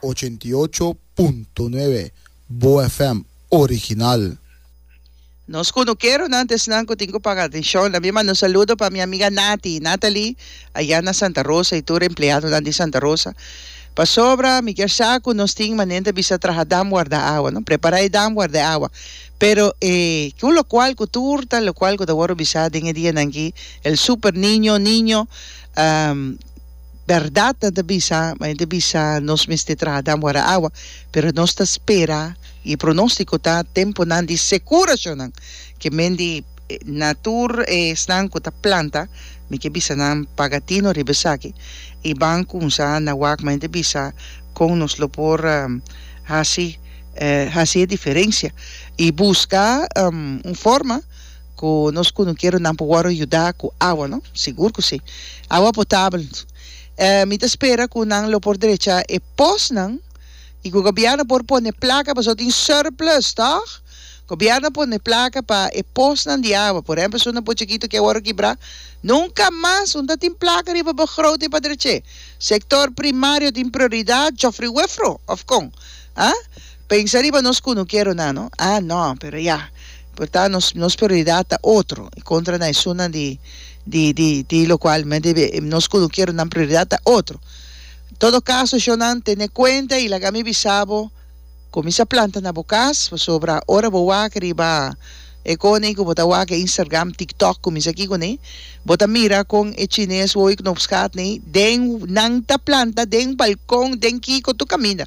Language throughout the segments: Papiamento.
Ochenta i ocho punto nuebe, Boa FM original. Nos kunukeronan ta esnan ku tin ku paga atenshon la mima nos saludo pa mi amiga Nati, Nathalie, aya na Santa Rosa i tur empleadonan di Santa Rosa. Pasobra mi kier sa ku nos tin manente bisa traha dam warda awa, no? Prepara e dam warda e awa. Pero e ki un lokual ku tur ta lokual ku ta wòrdu bisa den e dianan aki, el Super Niño, Niño, Berdad nan ta bisa, ma e ta bisa nos mester traha dan wara awa, pero nos ta spera y e pronostico ta temponan di securacionnan, ke men di na tur esnan cu ta planta, mi ke bisa nan paga tino riba esaki y ban cunsa na wak, ma e ta bisa con nos lo por haci haci e diferencia y busca un forma. Ku nos kunukeronan por wòrdu yudá ku awa, no? Sigur ku sí. Awa potabel. E mi ta spera ku nan lo por drechá e posnan i ku gobièrnu por pone plaka pasobra tin surplus, tòg? Gobièrnu pone plaka pa e posnan di awa. Por ehèmpel, si un apo chikitu ke wòrdu kibrá, nunka mas un ta tin plaka riba bo grote pa drech'é. Sektor primario tin prioridat, jòfriwefro òf kon? Aa? Pensa riba nos ku no kier runá no. A no, pero ya. Por ta nos nos prioridat ta otro i kontra na esunnan di di di di lokual mi a debe nos ku no kier runan prioridat ta otro. Todo kaso shonnan tene kuenta i laga mi bisa bo kuminsa planta na bo kas pasobra ora bo wak riba e kone ku bo ta wak e Instagram, TikTok kuminsa aki kuné bo ta mira kon e chines wowo i knopsgat nei den nan ta planta den balkon den kiko tur kaminda.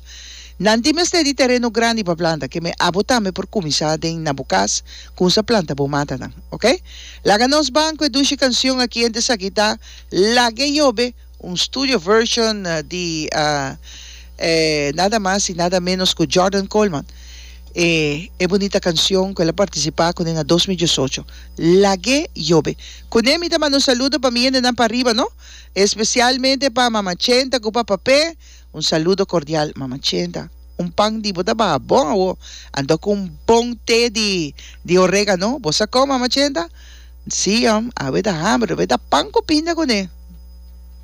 Nan tin mester di tereno grandi pa planta keme abo tambe por kuminsá den na bo kas kun sa planta bo matanan ok laga nos ban ku e dushi kansion aki ente esaki ta Lag'e Yobe un studio version di e nada mas i nada menos ku Jordan Coleman e e bunita kansion ku el a partisipá kuné na dos mil diesocho Lag'e Yobe kuné mi ta manda un saludo pa mi hendenan pa riba no espesialmente pa Mama Chenta ku Papa Pe. Un saludo cordial Mama Cheda. Un pan di bo ta baha bon awo anto cu un bon te di di oregano. Bo sa con Mama Cheda? Nsiom, awe ta hamber, lo be ta pan cu pinda cune.